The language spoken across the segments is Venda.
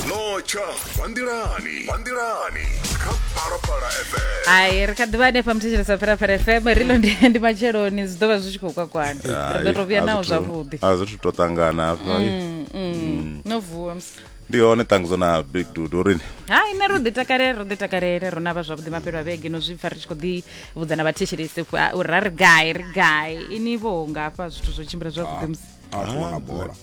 notsha bva nḓilani bva nḓilani kha phalaphala fm hai ri kha ḓivha hanefha muthetshelesa phalaphala fm ri ḽo ndi- ndi matsheloni zwi ḓo vha zwi tshi khou kwakwana ri ḓo to vhuya nawo zwavhuḓi a zwithu to ṱangana hafha no vuwa musi ndi hone ṱangudzo na big dude urini hai nṋe ro ḓi takalele ro ḓi takalele ro navha zwavhuḓi mafhelo a vhege no zwi pfa ri tshi khou ḓi vhudza na vhathetshelesi uri ra ri gai ri gai ini vho ngafha zwithu zwo tshimbila zwavhuḓi musi a tshi wana bola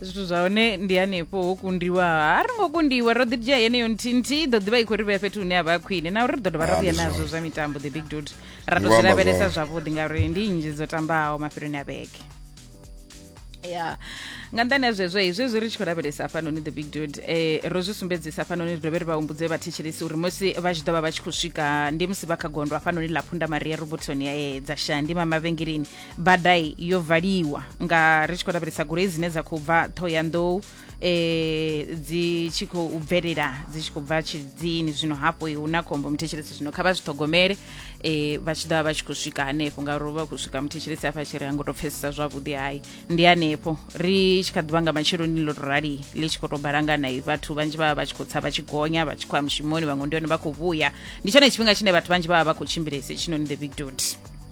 zwithu zwa hone ndi hanefho ho kundiwa a ri ngo kundiwa ro ḓi dzhia yeneyo nthihi nthihi ḓo ḓivha i khou ri vhea fhethu hune a vha a khwine na uri ri ḓo dovha ra Ah, vhuya ndi nazwo zwone. zwa mitambo the big dot ra Ndi tou vho zwi amba lavhelesa zwone. zwavhuḓi ngauri ndi nnzhi dzo tambaho mafheloni a vhege ya nga nḓani ha zwezwo hezwi zwi ri tshi khou lavhelesa hafhanoni the big dot eh, ro zwi sumbedzisa hafhanoni ri dovhe ri vha humbudze vhathetshelesi uri musi vha tshi ḓo vha vha tshi khou swika ndi musi vha kha gondo hafhanoni ḽa phunda maria robotoni eh, dza shandi mamavhengeleni badai yo valiwa nga ri tshi khou lavhelesa goloi dzine dza khou bva thohoyandou eh dzi tshi khou bvelela dzi tshi khou bva tshidzini zwino hafho hu na khombo muthetshelesi zwino kha vha zwi ṱhogomele eh vha tshi ḓovha vha tshi khou swika hanefho ngauri vha khou swika muthetshelesi hafha tshi ri a ngo tou pfesesa zwavhuḓi hai ndi hanefho ri tshi kha ḓuvha nga matsheloni ḽo to rali ḽi tshi khou tou balangana i vhathu vhanzhi vha vha vha tshi khou tsa vha tshi gonya vha tshi khou ya mushumoni vhaṅwe ndi hone vha khou vhuya ndi tshone tshifhinga tshine vhathu vhanzhi vha vha vha khou tshimbilesa hetshinoni the big dot